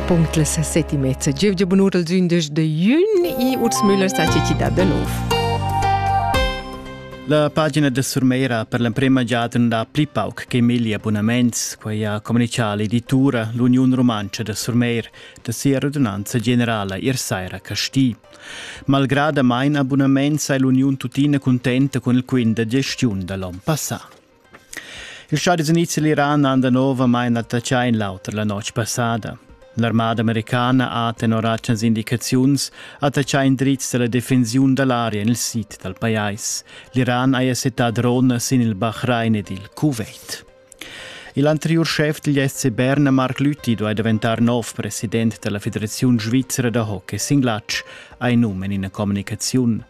Punct la sesseti mezza gievgia bunur als undisch de jun e Urs Müller sa cità da nov. La pagina da Surmeira per l'emprema giada da pli pauc che migli abunaments, quai ha comunicato l'editura L'Union Romancia da Surmeir da sia radunanza generala Irsaira Casti. Malgrad a main abunaments è l'Union tuttina contenta con il quint da gestiun da l'on passà. Ils Stadis Units e l'Iran han danovamain attaccà in l'auter la notg passada. L'armada americana ha tenor atgnas indicaziuns attaccà indrizs da la defensiun da l'aria en il sid dal pajais. L'Iran ha settà drone sin il Bahrain ed il Kuwait. Il anteriur schef degl SC Bern, Marc Lütti, duai daventar nov president della Federazione Svizzera da hockey singlatsch, ha num en ina communicaziun.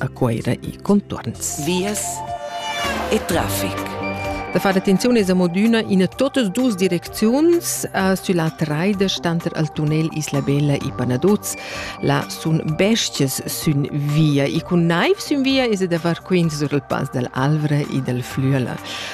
a Cueira e contorns. Vias e traffic. Da far attenzione es amodüna in totas duas direcziuns. Uh, sulla traida stanter al tunnel Isla Bella e Panaduz la sun bestias sün via e cun naiv sün via es da far quint sur il pass dal Alvra e dal Flüela.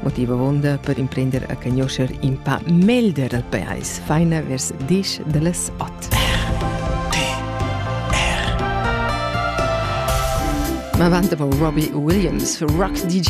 motiv avunda per imprender a conoscer in pa melder dal pais, faina vers disch da las ot. Ma vanta Robbie Williams, rock DJ